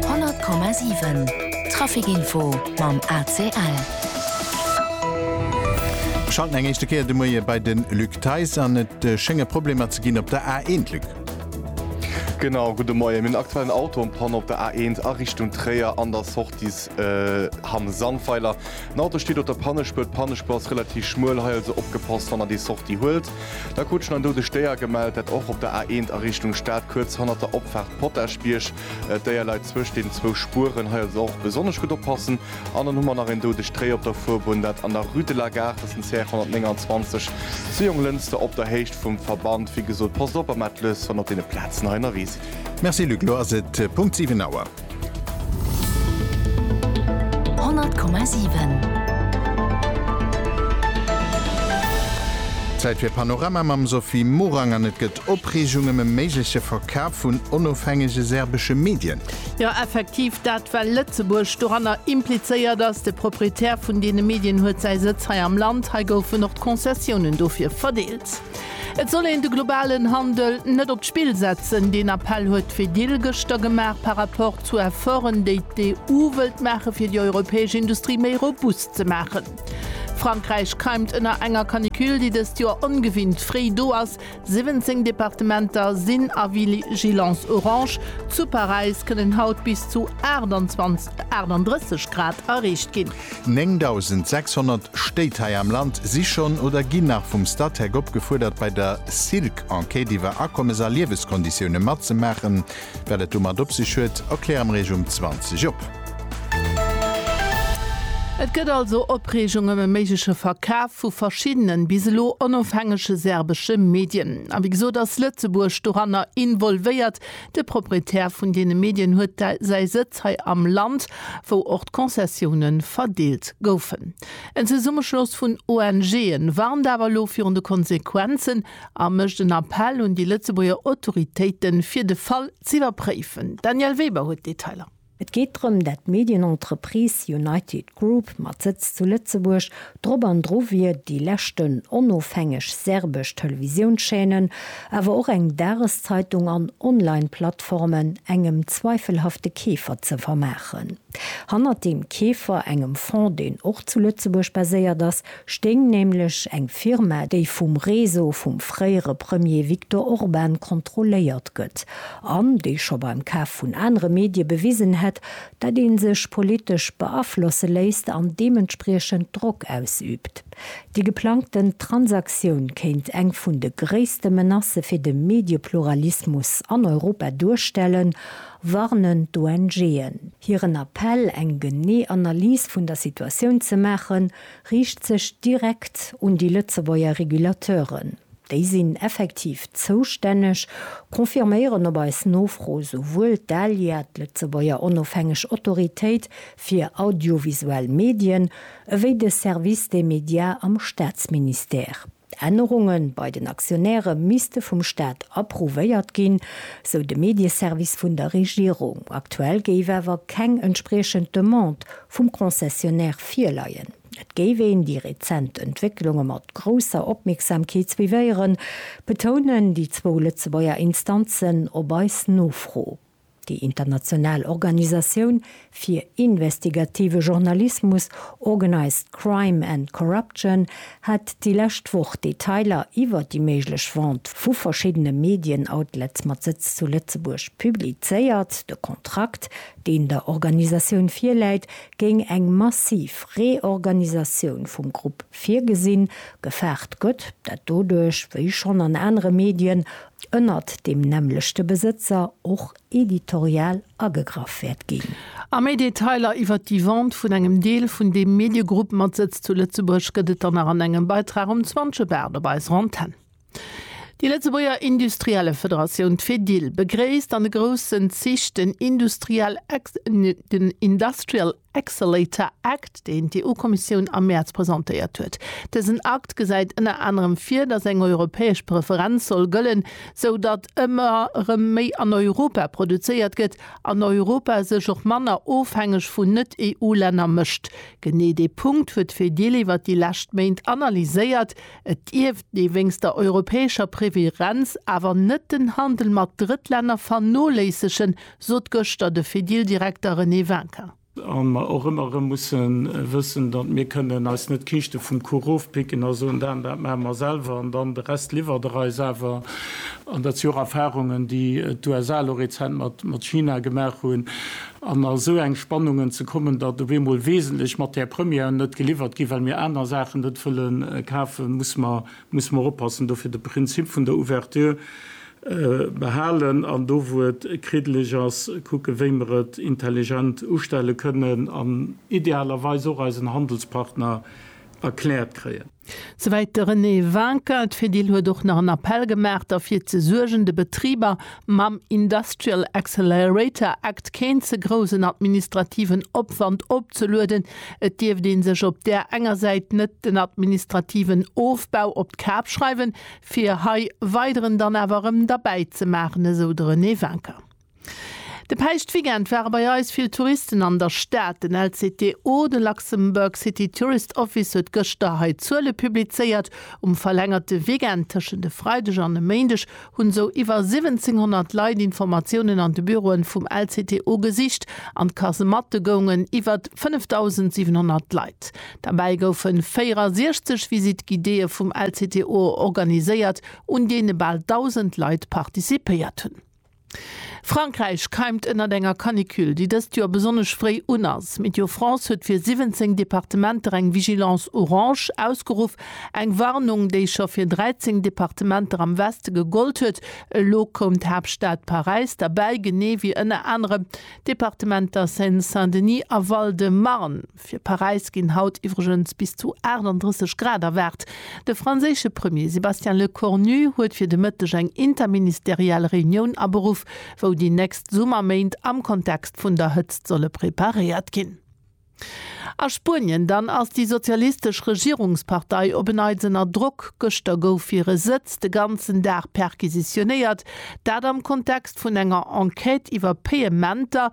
100,7 Trafic info mam ACL. Mir schalten eng éischte Kéier de Moie bei de Luc Theis an. Et schénge Problemer ze ginn op der A1, Luc. Genau, gudde Moien. Mir hunn en aktuellen Auto en panne op der A1 a Richtung Tréier an der Sortie Hamm Sandweiler. Den Auto steet op der Pannespuer. D'Pannespuer ass relativ schmuel, hei also opgepasst, wann der déi Sortie huelt. Da krut schonn an do de Stéier gemellt, dat och op der A 1 a Richtung Stad, kuerz hannert der Opfaart Potaschbierg. D'Déier leit zwëscht den zwou Spueren, hei also och besonnesch gutt oppassen. An dann hu mer nach een doudegt Déier op der Fuerbunn, dat an der Rue de la Gare, dat ass den CR 129, zu Jonglënster op der Héicht vum Verband. Wéi gesot, passt op a maacht lues wann op deene Plazen hei ënnerwee sidd. Merci Luc, elo ass et Punkt 7 Auer. Honnert Komma siwen. Zäit fir Panorama mam Sophie Morang an et gëtt Opreegung ëm e méigleche Verkaf vun onofhängege serbesche Medien. Jo effektiv, dat well Lëtzebuerg doranner implizéiert ass. De Proprietär vun deene Medien huet säi Sëtz hei am Land. Hei goufen och d'Konzessiounen dofir verdeelt. Et soll een de globalen Handel net op d'Spill setzen. Deen Appell huet d'Fedil gëschter gemaach par rapport zu Efforten, déi d'EU wëllt maache fir déi europäesch Industrie méi robust ze maachen. Frankräich keimt ënner enger Canicule, déi dëst Joer ongewinnt fréi do ass. 17 Departementer sinn a Vigilance orange. Zu Paräis kënnen haut bis zu 38 Grad erreecht ginn. 9.600 Stéit hei am Land si schonn oder ginn nach vum Statec opgefuerdert, bei der Silk Enquête iwwer Akommes a Lieweskonditioune matzemaachen. Wat et domat op sech huet, erkläre mir Iech um 20 op. Et gëtt also Opreegung ëm e méigleche Verkaf vu verschiddenen, bis elo onofhängege serbesche Medien. A wéi gesot ass Lëtzebuerg doranner involvéiert. De Proprietär vun deene Medien huet säi Sëtz hei am Land, wou och d'Konzessioune verdeelt goufen. En Zesummeschloss vun ONG'en warnt awer elo virun de Konsequenzen a mécht en Appell un déi Lëtzebuerger Autoritéiten, fir de Fall z'iwwerpréifen. D'Danièle Weber huet d'Detailer. Et geet drëm, dat d'Medienentreprise United Group mat Sëtz zu Lëtzebuerg drop an dru wier, déi leschten onofhängeg serbesch Televisiounschaînen, awer och eng Dageszeitung an Online-Plattformen engem zweifelhafte Keefer ze vermaachen. Hannert deem Keefer, engem Fonds, deen och zu Lëtzebuerg baséiert ass, stéing nämlech eng Firma, déi vum Réseau vum fréiere Premier Viktor Orban kontrolléiert gëtt an déi scho beim Kaf vun anere Medie bewisen hätt, datt ee sech politesch beaflosse léisst an deementspriechend Drock ausüübt. Déi geplangten Transaktioun kéint eng vun de gréisste Menacë fir de Mediepluralismus an Europa duerstellen, warnen d'ONGen. Hiren Appell, eng genee Analys vun der Situatioun ze maachen, riicht sech direkt un déi Lëtzebuerger Regulateuren. Déi sinn effektiv zoustänneg, confirméieren op eis Nofro souwuel d'ALIA, d'Lëtzebuerger onofhängeg Autoritéit fir audiovisuell Medien, ewéi de Service des médias am Staatsministère. D'Ännerunge bei den Aktionäre misste vum Staat approuvéiert ginn, sou de Medieservice vun der Regierung. Aktuell géif awer keng entspriechend Demande vum Concessionnaire virleien. Et géif een déi rezent Entwécklunge mat grousser Opmierksamkeet suivéieren, betounen déi zwou Lëtzebuerger Instanzen op eis Nofro. Déi international Organisatioun fir investigative Journalismus Organised Crime and Corruption hat déi lescht Woch Detailer iwwer déi méiglech Vente vu verschiddene Medien-Outlets mat Sëtz zu Lëtzebuerg publizéiert. De Kontrakt, deen der Organisatioun virläit, géing eng massiv Reorganisatioun vum Grupp virgesinn. Gefaart gëtt, dat doduerch, wéi schonn an anere Medien, ënnert deem nämmlechte Besëtzer och editorial agegraff wäert ginn. A méi Detailer iwwert déi Vente vun engem Deel vun deem Mediegrupp mat Sëtz zu Lëtzebuerg gëtt et dann nach an engem Beitrag um 20 Uer Bart op eiser Antenn. Déi Lëtzebuerger Industriellefederatioun, d'Fedil, begréisst an de groussen Zich den Industrial Accelerator Act, deen d'EU-Kommissioun am Mäerz presentéiert huet. Dësen Akt gesäit ënner anerem vir, datt eng europäesch Preferenz soll gëllen, sou datt ëmmer erëm méi an Europa produzéiert gëtt an Europa sech och manner ofhängeg vun Net-EU-Länner mécht. Genee dee Punkt huet d'Fedil iwwer déi lescht Méint analyséiert. Et dierft ee wéinst der europäescher Preferenz awer net den Handel mat Drëttlänner vernoléissegen, Sot gëschter de Fedil-Direkter René Wincker. A mer och ëmmer erëm musse wëssen, datt mir kënnen eis net d'Kiischte vum Kuch ofpicken a soen, dat an dat maache mer selwer an dann de Rest liwwert Der eis awer. An dat si och Erfarungen, déi d'USA elo rezent mat China gemaach hunn. An a sou eng Spannungen ze kommen, datt op eemol wesentlech Matière-premièren net geliwwert ginn, well mir aner Saachen net wëlle kafen, muss mer oppassen. Dofir de Prinzip vun der Ouverture behalen an do wou et kriddeleg ass kucke wéi mer et intelligent ustelle kënnen an idealerweis och eisen Handelspartner erkläert kréien. Souwäit de René Vinken. D'Fedil huet och nach en Appell gemaach derfir ze suergen de Betriber mam Industrial Accelerator Act keen ze groussen administrativen Opwand opzelueden. Et dierft ee sech op där enger Säit net den administrativen Ofbau op d'Kap schreiwen, Fir hei weideren dann awer erëm derbäi ze maachen, esou de René Wincker. De Päischtweekend ware bei eis vill Touristen an der Stad. Den LCTO, de Luxembourg City Tourist Office, huet gëschter hei d'Zuele publizéiert. Um verlängerte Weekend tëschent e Freideg an e Méindeg hunn esou iwwer 1700 Leit Informatiounen an de Büroen vum LCTO gesicht an d'Kasematte goungen iwwert 5.700 Leit. Derbäi goufe 64 Visite guidéë vum LCTO organiséiert, un deene bal 1.000 Leit participéiert hunn. Frankräich keimt ënnert enger Canicule, déi dëst Joer besonnesch fréi un ass. Météo France huet fir 17 Departementer eng Vigilance orange ausgeruff, eng Warnung, déi scho fir 13 Departementer am Weste gegollt huet. Elo koum d'Haaptstad Paräis derbäi, genee wéi ënner anerem d'Departementer Seine-Saint-Denis a Val-de-Marne. Fir Paräis ginn haut iwwregens bis zu 38 Grad erwaart. De franséische Premier Sébastien Lecornu huet fir de Mëtteg eng interministeriell Reunioun aberuff, wou déi nächst Summerméint am Kontext vun der Hëtzt solle preparéiert ginn. A Spuenien dann ass déi sozialistesch Regierungspartei op en Neits ënner Drock. Gëschter gouf hire Sëtz de ganzen Dag perquisitionéiert, dat am Kontext vun enger Enquête iwwer Payementer,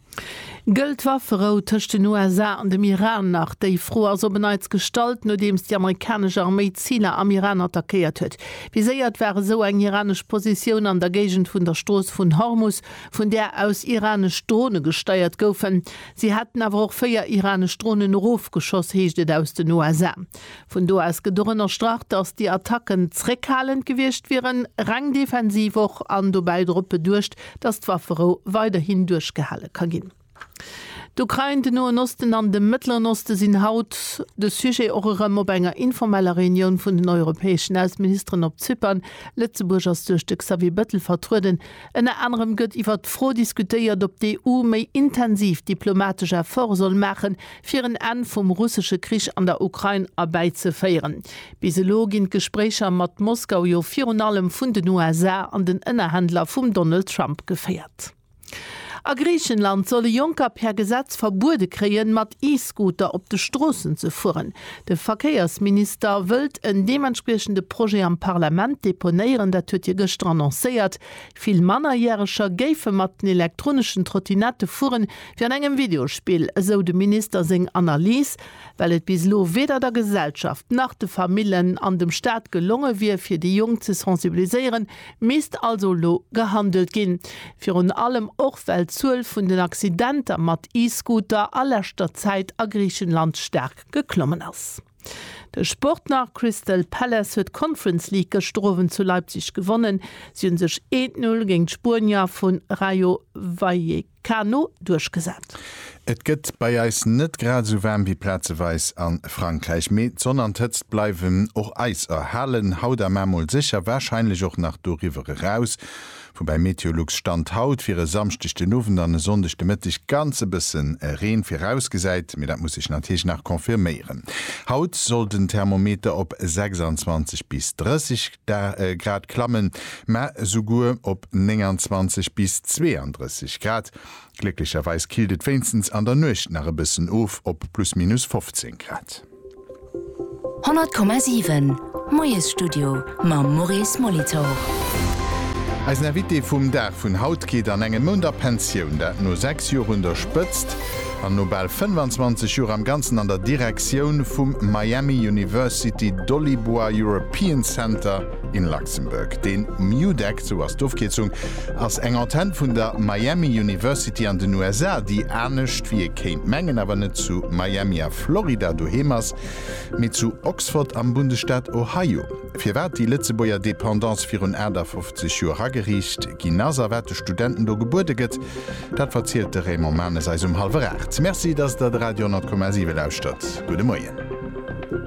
Gëllt Wafferou tëscht den USA an dem Iran nach? Déi Fro ass op en Neits gestallt, nodeems déi amerikanesch Arméi Ziler am Iran attackéiert huet. Viséiert war esou eng iranesch Positioun an der Géigend vun der Strooss vun Hormus, vun där aus iranesch Drone gesteiert goufen. Si hätten awer och véier iranesch Dronen erofgeschoss, heescht et aus den USA. Vun do aus gëtt och ënnerstrach, datt déi Attacken zréckhalend gewiescht wieren, reng defensiv och, an dobäi drop beduecht, datt d'Wafferou weiderhin duerchgehale ka ginn. D'Ukrain, den Noen Osten an de Mëttleren Oste sinn haut de Sujet och erëm op enger informeller Reunioun vun den europäeschen Ausseministeren op Zypern. Lëtzebuerg ass duerch de Xavier Bettel vertrueden. Ënner anerem gëtt iwwert d'Fro diskutéiert, ob d'EU méi intensiv diplomatesch Efforte soll maachen, fir en Enn vum russesche Krich an der Ukrain erbäizeféieren. Bis elo ginn d'Gespréicher mat Moskau jo virun allem vun den USA an den Ënnerhändler vum Donald Trump geféiert. A Griichenland soll e Jonker per Gesetz verbuede kréien, mat E-Scooter op de Stroossen ze fueren. De Verkéiersminister wëllt en deementspriechende Projet am Parlament deponéieren, dat huet hie gëschter annoncéiert. Vill Mannerjäreger géife mat den elektroneschen Trottinette fueren, wéi an engem Videospill, esou dem Minister seng Analys, well et bis elo weder der Gesellschaft nach de Famillen an dem Staat gelonge wier, fir déi Jonk ze sensibiliséieren. Misst also elo gehandelt ginn, virun allem och well d'Zuel vun den Accidenter mat E-Scooter a leschter Zäit a Griichenland staark geklommen ass. De Sport nach, Crystal Palace huet d'Conference League gëschter Owend zu Leipzig gewonnen. Si hunn sech eent Null géint d'Spuenier vu Rayo Vallecano duerchgesat. Et gëtt bei eis net grad esou waarm wéi plazeweis a Frankräich, mee d'Sonn an d'Hëtzt bleiwen och eis erhalen. Haut a mar mol sécher warscheinlech och nach doriwwer eraus. Woubäi Meteolux Stand haut fir e Samschdeg den Owend an e Sonndeg de Mëtteg ganz e bësse Reen virausgesäit, mee dat muss sech natierlech nach confirméieren. Haut soll den Thermometer op 26 bis 30 Grad klammen, mä esouguer op 29 bis 32 Grad. Glécklecherweis killt et wéinstens an der Nuecht nach e bëssen of op plus minus 15 Grad. 100,7 Moiesstudio mam Maurice Molitor. Eisen Invité vum Dag vun haut geet an engem Mount a Pensioun, dat no 6 Joer un der Spëtzt an no bal 25 Joer am Ganzen an der Direktioun vum Miami University Dolibois European Center in Luxembourg. De MIUDEC, esou ass d'Ofkierzung, ass eng Antenn vun der Miami University an den USA, déi, anescht wéi ee kéint mengen, awer net zu Miami a Florida doheem ass, mee zu Oxford am Bundesstaat Ohio. Firwat déi Lëtzebuerger Dependance virun 58 Joer ageriicht ginn ass a wat de Studenten do gebuede gëtt, dat verzielt de Raymond Manes eis um hallwer 8. Merci, dass Der de Radio 100,7 lauschtert. Gudde Moien.